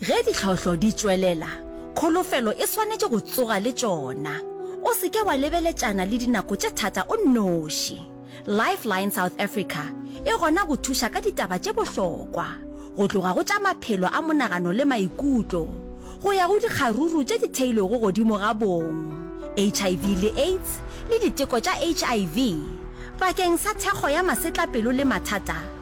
Ge ditlhohlo di tšwelela, kholofelo e swanetše go tsoga le tšona. O se ke wa lebeletšana le dinako tše thata o nnoši. Lifeline South Africa e gona go thuša ka ditaba tše bohlokwa, go tloga go tša maphelo a monagano le maikutlo go ya go dikgaruru tše di theilwego godimo ga bong, HIV le AIDS le diteko tša HIV. Bakeng sa thekgo ya masetlapelo le mathata,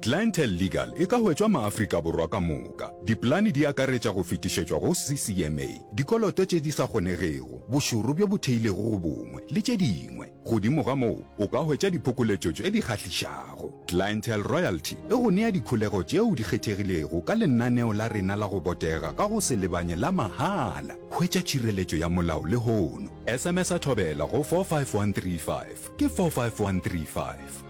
Clientele Legal e ka hwetšwa maAfrika Borwa ka moka. Dipolane di akaretša go fetišetšwa go CCMA, dikoloto tše di sa kgonegego, bošoro bjo bo theilego go bongwe, le tše dingwe. Godimo ga moo, o ka hwetša diphokoletšo tše di kgahlišago. Clientele Royalty e go nea dikholego tšeo di kgethegilego ka lenaneo la rena la go botega ka go se lebanye la mahala. Hwetša tšhireletšo ya molao lehono. SMS-a Thobela go 45135, ke 45135.